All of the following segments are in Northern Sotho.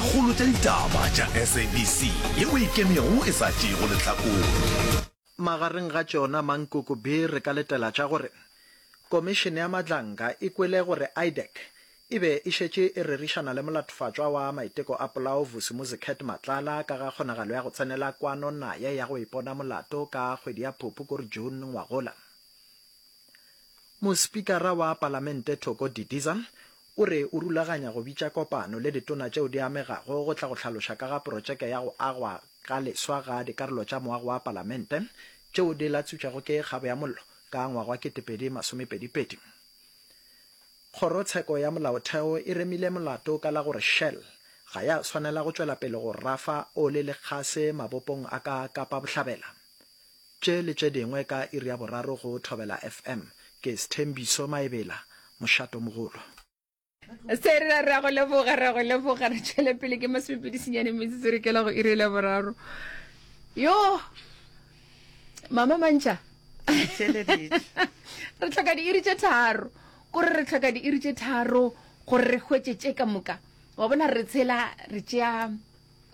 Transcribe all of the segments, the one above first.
Kgolo tša ditaba tša SABC yeo e ikemego e sa tšeego lehlakore. Magareng ga tšona mankoko be re ka letela tša gore Komišene ya Madlanka e kwele gore IDEC e be e šetše e rerišana le molatofatšwa wa maiteko a polao Vusi Muzicat Matlala ka ga kgonagalo ya go tsenela kwano naye ya go ipona molato ka kgwedi ya Phupu kore June ngwagola. Mospikara wa Palamente Thoko Didiza O re o rulaganya go bitša kopano le ditona tšeo di amegago go tla go hlaloša ka ga protšeke ya go agwa ga leswa ga dikarolo tša moago wa palamente tšeo di latsutšwego ke kgabo ya mollo ka ngwaga wa 2022. Kgorotsheko ya Molaotheo e remile molato ka la gore Shell ga ya swanela go tšwela pele go rafa ole le kgase mabopong a ka Kapa Bohlabela. tše le tše dingwe ka iri ya boraro go Thobela FM. Ke Sthembiso Maebela, mošatomogolo. Se re ra re a go leboga, ra go leboga, re tšwele pele ke masomepedisinyane metsotso re kela go iri le boraro. Yo mama mantšha re tlhoka diiri tše tharo kore re tlhoka diiri tše tharo gore re hwetše tše ka moka wa bona re tshela re tšea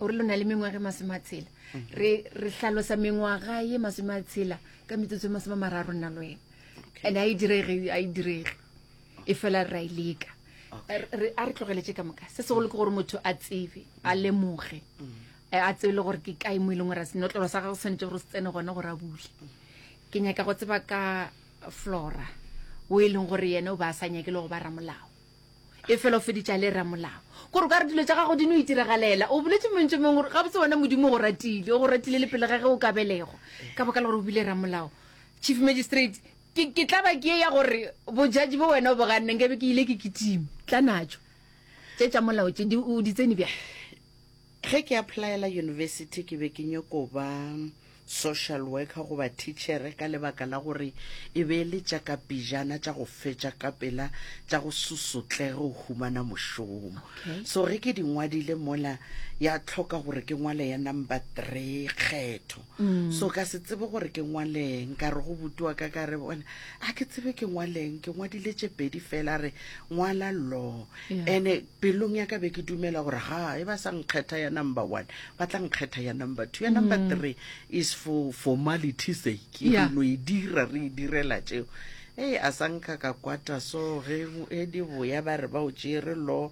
o re lo na le mengwaga e masome a tshela re re hlalosa mengwaga ye masome a tshela ka metsotso e masome a mararo nna le wena and a e direge a e direge e fela ra e leka Re- a re tlogeletse ka moka se segolo ke gore motho a tsebe a lemoge Eh, a tsebe le gore ke kae mo e leng gore a senotlolo sa gagwe se tshwanetse gore se tsene gona gore a bule ke nyaka go tseba ka flora o e leng gore yena o ba a sa nyake le go ba ramolao e fela o feditša le ramolao gore o ka re dilo tša gago di no itiragalela o boletse montse mongwe gore gabotse wena modimo go ratile o go ratile le pele ga ge o ka belego ka boka le gore o bile ramolao chief magistrate ke ke tla ba ke ya gore bojaji bo wena o boganneng ke be ke ile ke kitime tla natso tše tša molao tše di o di tsene bjang Ge ke applyela yunibesithi ke be ke nyoko ba social worker goba thitšhere ka lebaka la gore e be e le tša ka pijana tša go fetša ka pela tša go susotlege go humana mošomo. So ge ke di ngwadile mola ya tlhoka gore ke ngwale ya number three kgetho. So ka se tsebe gore ke ngwaleng ka re go buti wa ka ka re bona a ke tsebe ke ngwaleng ke ngwadile tše pedi fela a re ngwala law ene pelong ya ka be ke dumela gore ga e ba sa nkgetha ya number one ba tla nkgetha ya number two ya number mm. three is for formality sake yeah. no e dira re e direla tšeo ee a sa nka ka kwata so ge e di boya ba re ba o tšere lo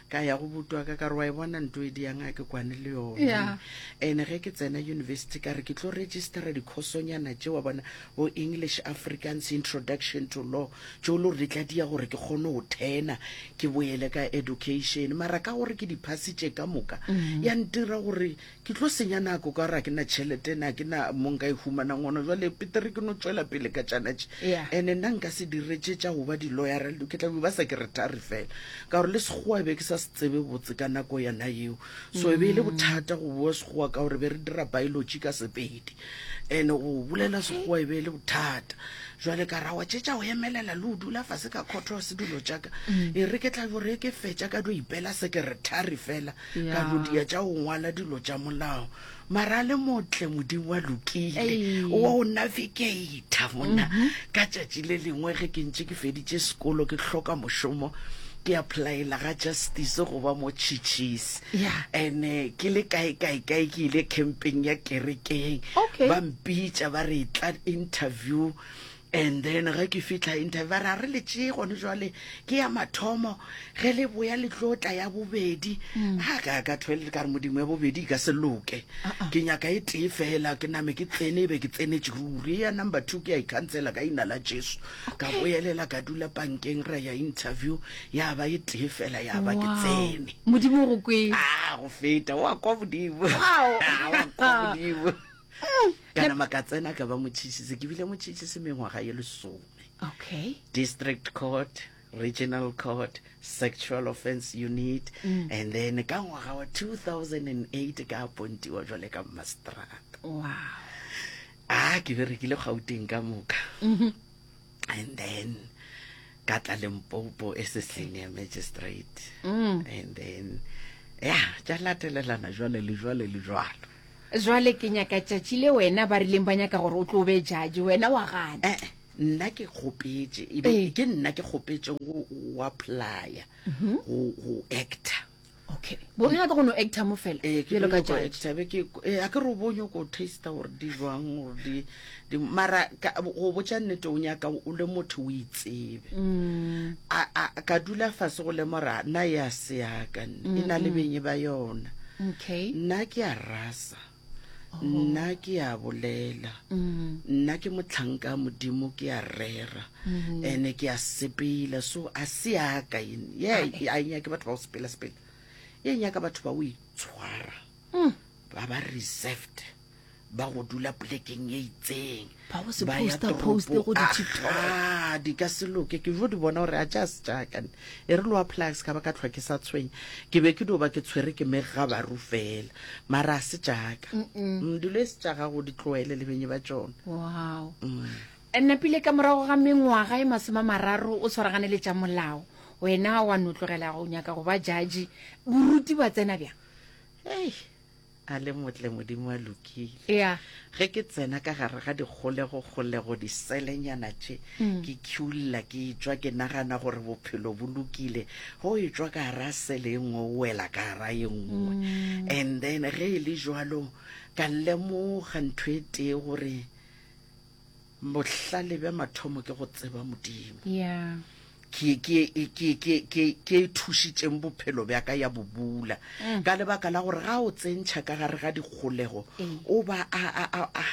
ka ya go butwa ka kare wa e bona nto e diyang a ke kwane le yone and ge ke tsena university ka re ke tlo registera dikhosonyana tse wa bona O English Afrikaans Introduction to Law, tšo lo re tla dia gore ke kgone go thena ke boele ka education. Mara ka gore ke di phasitše ka moka, mm-hmm. ya ntira gore ke tlo senya nako ka gore ga ke na tšhelete na ke na mo nka e humanang gona. Jale petere ke no tšwela pele ka tšanatše. Yeah. And nna nka se diretse tša go ba di-lawyer, ke tla be ba sa ke retare fela. Ka gore le Sekgowa be ke sa se tsebe botse ka nako yona yeo. So e be e le mm-hmm. bothata go boa Sekgowa ka gore be re dira biology ka Sepedi. ene go bolela sekgowa e be e le bothata jwale ka ra wa tšetša go emelela le o dula fase ka khotho ya sedulo tšaka mm. e re ke tla bore ke fetša ka dio ipela sekeretari fela ka lodia tša go ngwala dilo tša molao mara le motle modimo wa lokile wa o navigata mona mm-hmm. ka tšatši le lengwe ge ke ntše ke feditše sekolo ke hloka mošomo ke applyela ga justice go ba mo chichis Yeah. ene ke le kae kae kae ke ile campeng ya kerekeng Okay. ba mpitša ba re tla interview and then ge ke fitlha interview ba re a re le tšee gone jwale ke ya mathomo ge le boya le tlo tla ya bobedi Mm. a ka ka thwele ka re modimo ya bobedi e ka se loke Uh-uh. ke nyaka e tee fela ke name ke tsene e be ke tsenetse ruri ya number two ke ya ikhansela ka ina la jesu ka Okay. boelela ka dula pankeng ra ya interview ya ba e tee fela ya ba ke tsene modimo go kwe a ah, go feta wa kwa modimo modimo kana mm. maka tsena ka ba motšhitšhise ke bile motšhitšhise mengwaga ye lesome okay district court regional court sexual offense unit mm. and then ka ngwaga wa 2008 ka apontiwa jwale ka mastrata wow a ah, ke berekile gauteng ka moka mm -hmm. and then ka tla lempopo e se senior magistrate mm. and then ya tša latelelana jwale le jwale le jwalo jwale ke nyaka tšatši le wena ba rileng ba nyaka gore o tlo be jaji wena wa gana eh, eh, nna ke kgopetse ebe eh. ke nna ke kgopetseng go apply go mhm. actor okay bo nyaka go no actor mo fela eh, ke lo ka judge be ke eh a ke ro bo nyoko taste or di jwang or di di mara go botsa nnete o nyaka o le motho o itsebe mm. a a ka dula fa se go le mora na ya se ya ka e na le mm-hmm. benye ba yona okay nna ke a rasa nna ke a bolela nna ke motlhanka modimo ke a rera ene ke a sepela so a se yaka ene ye a nyake batho ba go sepela sepela e nyaka batho ba o itshwara ba ba reserved ba go dula polekeng e itseng ba go se ba ya posta poste go toropo ka di-tiktok ga di ka se loke ke jo di bona gore a ja se jakane e re lowa plax ka ba ka tlhwa ke sa tshwenya ke be ke dio ba ke tshwere ke mege ga baru fela mara a se jaka Mm, dilo e se tša gago di tloele le benye ba tšona wow napile ka morago ga mengwaga e masoma mararo o tshwaragane le tša molao wena wa notlogela go nyaka go ba jaji boruti ba tsena bjang Hey, a le motle modimo a lokile yeah. ge ke tsena ka gare ga dikgolegokgolego diselenyana tše mm. ke khula ke etswa ke nagana gore bophelo bo lokile go etswa ka gara sele e nngwe o wela ka gara e nngwe mm. and then ge e le jalo ka lemoga ntho e tee gore bohlale bja mathomo ke go tseba modimo yeah. ke ke ke ke ke ke thušitseng bophelo bja ka ya bobula mm. ka lebaka la gore ga o tsentšha ka gare ga dikgolego mm. o ba a a a a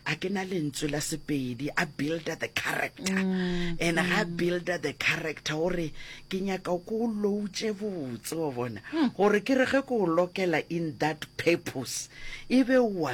a ke na lentswe la sepedi a builder the character mm. and ga mm. builder the character gore ke nyaka ko o loutse botse wa bona mm. gore ke re ge ko o lokela in that purpose e be wa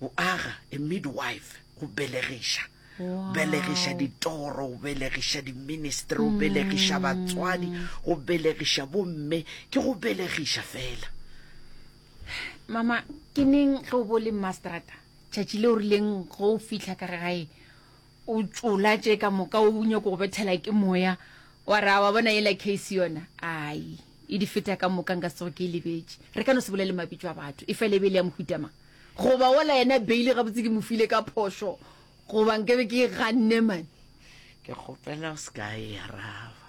go aga a midwife go belegiša wow. belegiša ditoro go belegiša diministry go mm. belegiša batswadi go belegiša bomme ke go belegiša fela mama ke neng ge o bo le mastrata tšatši le o rileng ge o fitlha ka gae o tšola tše ka moka o nyako go bethela ke moya wa ra wa bona yela case yona ai e di feta ka moka nka sego ke e lebetše re ka no se bolele mabitso a batho e fela e be le ya mohutama goba ola yena beile gabotse ke mo file ka phošo goba nke be ke ganne mane ke kgopela o se ka e araba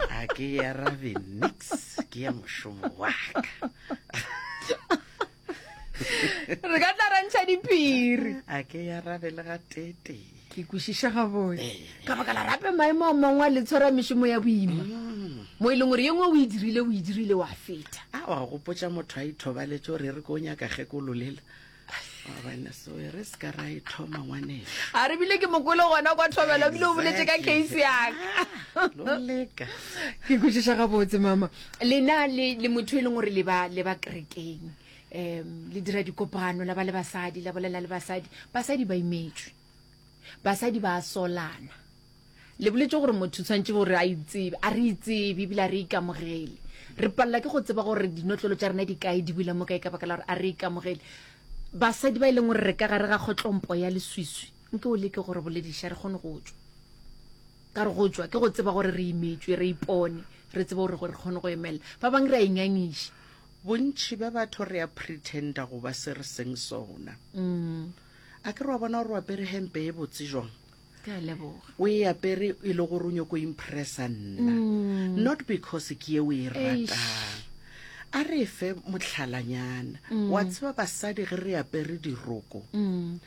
a ke e arabe nix ke ya mošomo waka re ka tla ra ntšha diphiri a ke ya rabe le ga tete ke kwešiša gabone eh. ka baka la rape maemo a mangwe a le tshwara mešomo ya boima mm. mo e leng gore ye ngwe o e dirile o e dirile wa feta a wa gopotsa motho a ithobaletse gore e re ko o nyaka kgekololela abana so e re se ka ra e thoma ngwanela a re bile ke mokolo gona kwa thobelo bile o boletse ka case yaka ah, loleka ke kwešiša gabotse mama Lena le, le motho e leng gore le ba, le ba kerekeng, um le dira dikopano, la ba le basadi, la bolela le basadi. Basadi ba imetšwe. Basadi ba a solana. Le boletše gore motho o tshwanetse gore a itsebe. A re itsebe ebile a re ikamogele. Re palela ke go tseba gore dinotlolo tša rena di kae, di bula mo kae ka baka la gore a re ikamogele. Basadi ba e leng gore re ka gare ga kgotlompo ya leswiswi, nke o leke go re bolediša re kgone go tšwa. Ka re go tšwa ke go tseba gore re imetšwe, re ipone, re tseba gore gore re kgone go emelela. Ba bang re a ingangiša. Bontši bja batho re a pretender go ba se re seng sona. A ke re wa bona gore o apere hempe e botse jwang? Ke a leboga. O e apere e le gore o nyoko go impressa nna, not because ke ye o e ratang. A re fe motlhalanyana. Wa tseba basadi ge re apere diroko,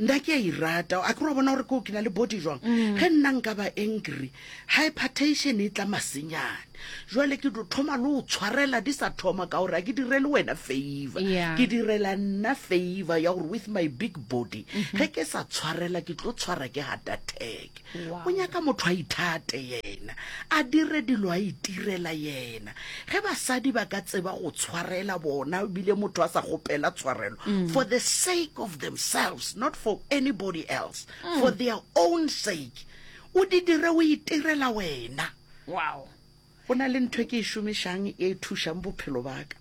nna ke a irata a ke re wa bona gore koo ke na le body jwang ge nna nka ba angry hypertation e tla masenyane jwale ke tlo thoma le o tshwarela di sa thoma ka gore a ke direle wena favor Yeah. ke direla nna favor ya gore with my big body ge ke sa tshwarela ke tlo tshwara ke heart attack o nyaka motho a ithate yena a dire dilo a itirela yena ge basadi ba ka tseba go tshwarela bona ebile motho a sa gopela tshwarelo mm. for the sake of themselves not for anybody else mm. for their own sake o di dire o itirela wena wow go na le ntho e ke e šomišang e thušang bophelo baka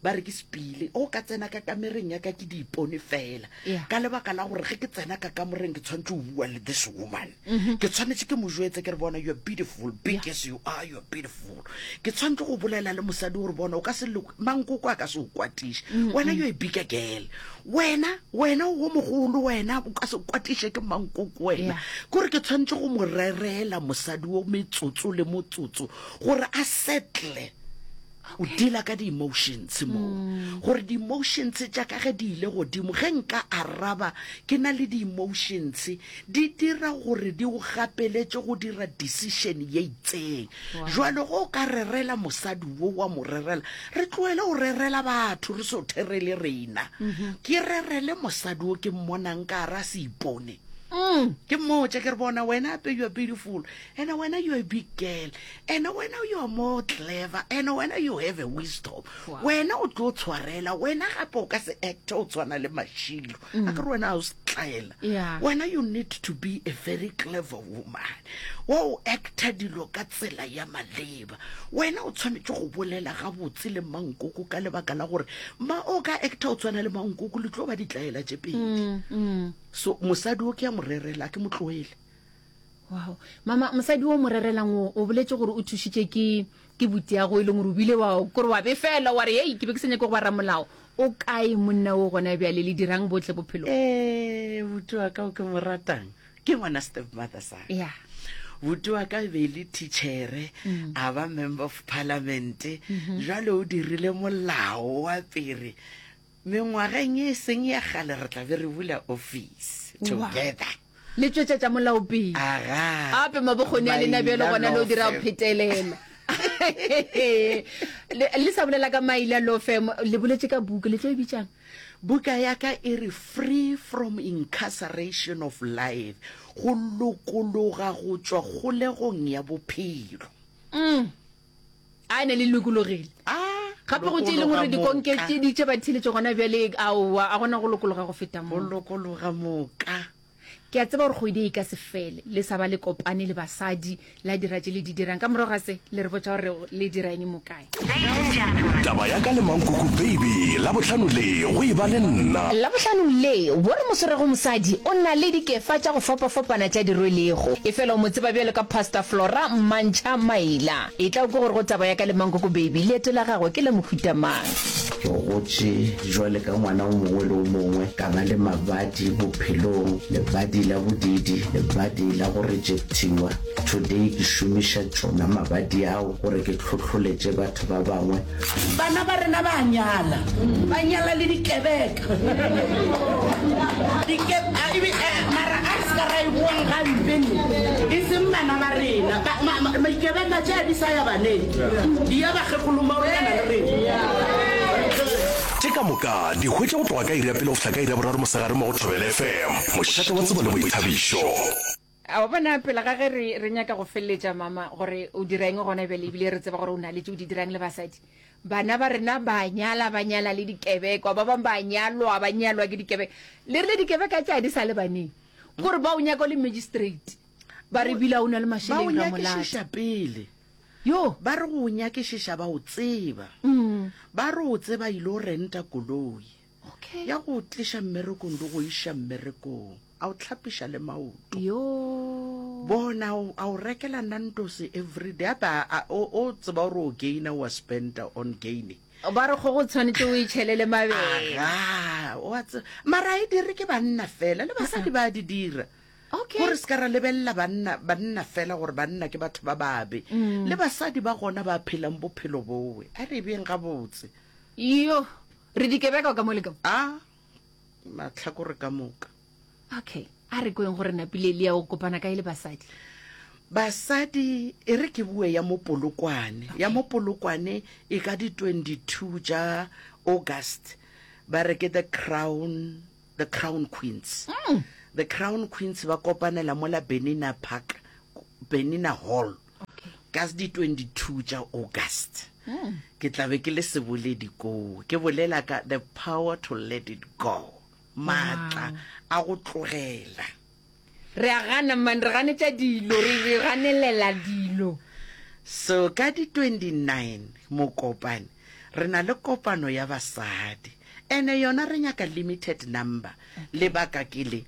ba re ke sepile o ka tsena ka kamereng ya ka ke di ipone fela Yeah. ka lebaka la gore ge ke tsena ka kamoreng ke tshwanetse o bua le this woman ke tshwanetse ke mo jetse ke re bona you're beautiful big as you are you're beautiful ke tshwanetse go bolela le mosadi gore bona o ka se le mankoko a ka se o kwatiše wena yo e bika gele wena wena wo mogolo wena o ka se kwatiše ke mankoko wena kore ke tshwanetse go mo rerela mosadi wo metsotso le motsotso gore a settle o dila ka di-emotions mo mm. gore di-emotions tša ka ge di ile godimo ge nka araba ke na le di-emotions di dira gore di o gapeletše go dira decision ye itseng Wow. jwale go o ka rerela mosadi wo wa mo rerela re tloele go rerela batho re so therele rena ke rerele mosadi wo ke mmonang ka ara se ipone ke mmotse ke re bona wena ape you're beautiful and wena you're a big girl and wena you're more clever and wena you have a wisdom Wow. wena o tlo tshwarela wena gape o ka se acte o tshwana le mashilo a ke re wena a o se tlaela Yeah. wena you need to be a very clever woman wa o acta dilo ka tsela ya maleba wena o tshwanetse go bolela gabotse le mankoko ka lebaka la gore ma o ka acta o tshwana le mankoko le tlo ba ditlaela tše pedi so mosadi o ke ya mo rerela ke mo tloele wow mama mosadi o mo rerelang o o boletse gore o thušitše ke ke butiago e leng gore o bile wa kore wa befela wa re ei ke be ke senyake go ba ramolao o kae monna o gona bjale le dirang botle bophelo ee buti wa ka o ke mo ratang ke ngwana step mother sa ya buti wa ka be e le tichere mm. a ba member of parliament mm-hmm. jale o dirile molao wa pere mengwageng e seng ya gale re tlabe re bula office together Le tšwetšetša molao pele. Aga. Ape ma bokgoni a lena bjalo gona le o dira go phetelela. Le le sa bolela ka maila law firm le boletše ka buka le tlo e bitšang? Buka ya ka e re Free from Incarceration of Life, Go lokologa go tšwa kgolegong ya bophelo. a ne le lokologile gape go tše e leng gore dikonke tše di tše ba theletše gona bjale aowa a gona go lokologa go feta mo lokologa moka ke a tseba gore kgwedi e ka se fele le sa ba le kopane le basadi la dira tše le di dirang ka morago ga se le re botsa gore le dira eng mo kae taba ya ka le mankoko baby la bohlano le go e ba le nna la bohlano le bo re moswerego mosadi o na le dikefa tša go fapafapana tša dirwelego e fela o mo tseba bjalo ka pastor flora mmantšha A Maila, etla o ke gore go taba ya ka le Mankoko Baby, leeto la gagwe ke la mohuta mang? Ke gotše jwale ka ngwana o mongwe le o mongwe, ka ba le mabadi bophelong, lebadi la bodiidi, lebadi la go rejectiwa. Today ke šomiša tšona mabadi ao gore ke hlohloletše batho ba bangwe Bana ba rena ba a nyala, ba nyala le dikebeka. Dike, a, ebe, a, mara a re se ka ra e boang gampe ne, e seng bana ba rena. Ba- ma- ma- Dikebeka tša di sa ya baneng, di ya bakgekgolong ba bolekana le rena. Tše ka moka di hwetša go tloga ka iri ya pele go fihla ka iri ya boraro mosegare mo go Thobela FM, mošate wa tsebo le boithabišo. A wa bona, pele ga ge re, re nyaka go feleletša, mama, gore o dira eng gona bjale, ebile re tseba gore o na le tše o di dirang le basadi. Bana ba rena ba nyala, ba nyala le dikebekwa, ba bangwe ba nyalwa, ba nyalwa ke dikebeka. Le rile dikebeka tša di sa le baneng, ke gore ba o nyaka o le magistrate, ba re bila o na le Ba o mašeleng ra molata. nyakišiša pele. Yo, Ba re go o nyakišiša ba o tseba. Ba re o tseba ile o renta koloi. okay. ya go tliša mmerekong le go iša mmerekong a o tlhapiša le maoto bona a o rekela nantose everyday ape o tseba gore o gaina wa spenta on gaine ba re go go tshwanetse o itšhelele mabele mara e dire ke banna fela le basadi ba di dira gore se ka ra lebelela banna fela gore banna ke batho ba babe mm. le basadi ba gona ba phelang bophelo bowe a re beng gabotse yo Re dikebeka o ka mo le ka mo. A mahlakore ka moka. Okay, a re kweng gore napile Elia o kopana ka e le basadi. Basadi e re ke bue ya mopolokwane. Okay. Ya mopolokwane e ka di 22 ja August. Ba re ke the crown the crown queens mm. the crown queens ba kopanela mola benina park benina hall okay. ka di-22 tša august mm. ke tlabe ke le seboledi koo ke bolela ka the power to let it go maatla wow. a go tlogela Re a gana, man, re ganetša dilo, re, re ganelela dilo. So, ka di 29 Mokopane, re na le kopano ya basadi. Ene yona re nyaka limited number. Lebaka ke le,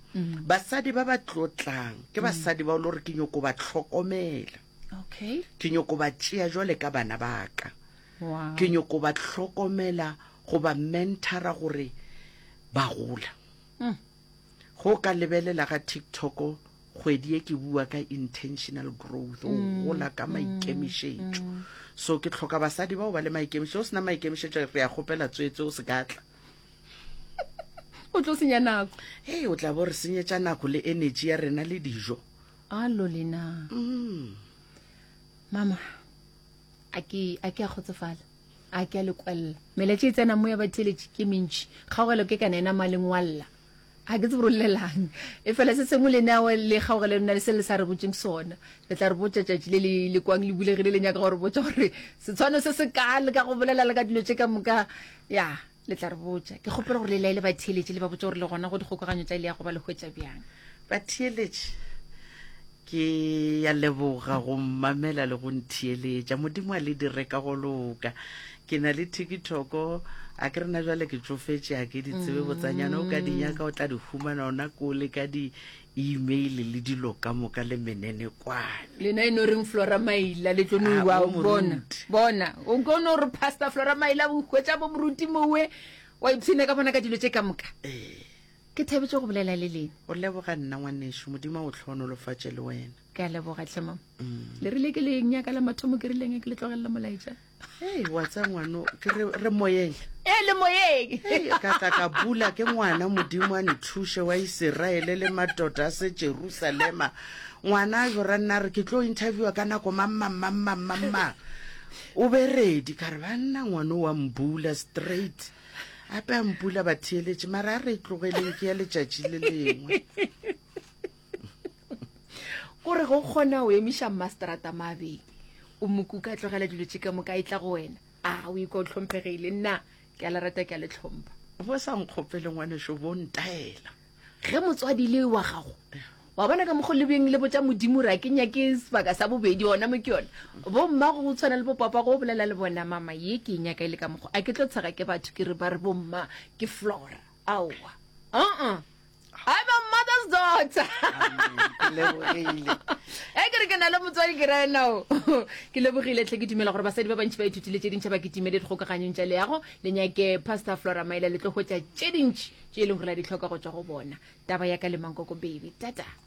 basadi ba ba tlo tlang, ke basadi ba o lo re ke nyoko ba tlhokomela. Okay. Ke nyoko ba tšea jwale ka bana ba ka. Wow. Ke nyoko ba tlhokomela, go ba mentora gore ba gola. Go ka lebelela ga TikTok kgwedi ye ke bua ka intentional growth o mm, gola ka mm, maikemišetšo mm. so ke tlhoka basadi bao ba le maikemišetšo o sena maikemišetšo re ya kgopela tswetse o se ka tla o tlo senya nako ee o tla bo re senyetša nako le energy ya rena le dijo alo lena mama a ke a kgotsofala a ke a le kwalla meletše e tsena mo ya batheletše ke mentši kgaogelo ke kana ena malengwalla ga ke tsebo rolelang e fela se sengwe le neo le kgaogelo nna le se le sa re botseng sona le tla re botsa tšatši le le le kwang le bulegile le nyaka gore botsa gore setshwano se se ka le ka go bolela le ka dilo tše ka moka ya le tla re botša ke kgopela gore le laele batheeletši le ba botša gore le gona go dikgokaganyo tsa ile ya go ba le hwetša bjang batheeletši ke ya leboga go mmamela le go ntheeletša modimo a le dire ka go loka ke na le tikitoko a ke rena jale ke tsofetse a ke ditsebe botsanyana o ka dinyaka o tla di humana ona kole ka di imeile le dilo ka moka le menene kwane. Lena e no reng Flora Maila le tlo no Ah, iwa o bona moruti. bona o ko no re pastor Flora Maila o hwetša bo moruti mowe wa ipshina ka bona ka dilo tše ka moka Ee, ke thabetše go bolela le lena o leboga nna ngwanešu modimo a o tlhohonolofatše le wena ke a leboga tlhe mama Mm. le rile ke le nyaka la mathomo ke rileng ke le tlogelela molaetša Hey, wa tsa ngwano ke re re moyeng e le moyeng Hey, ka tla ka bula ke ngwana modimo a nthuše wa iseraele le matota a se jerusalema ngwana a jora nna a re ke tlo interviewa ka nako mammammammammammang o be redi ka re banna ngwana o wa mbula straight ape a mpula batheeletše mara a re e tlogeleng ke ya letšatši le lengwe kore go kgona o emiša mmasterata mabe o mokuka a tlogela dilo tše ka moka e tla go wena a o ikwa o tlhomphegile nna ke a le rata ke a le tlhompha bo sa nkgopele ngwaneso bo ntaela ge motswadi le wa gago wa bona ka mokgo lebeng le botsa modimo ra ke nyake sebaka sa bobedi ona mo ke yone bo mma go tshwana le bopapa go bolela le bona mama ye ke e nyaka e le ka mokgo a ke tlo tshega ke batho ke re ba re bo mma ke flora aowa uh-uh I'm a mother's daughter. e ke re ke na le motswadi ke ra enao ke lebogile tlhe ke dumela gore basadi ba bantšhi ba ithutile tše dintšha ba ke timele dikgokaganyong tša leago le nyake pastor flora maela le tlo hwetša tše dintšhi tše e leng gore la di tlhoka go tswa go bona taba ya ka le mankoko baby tata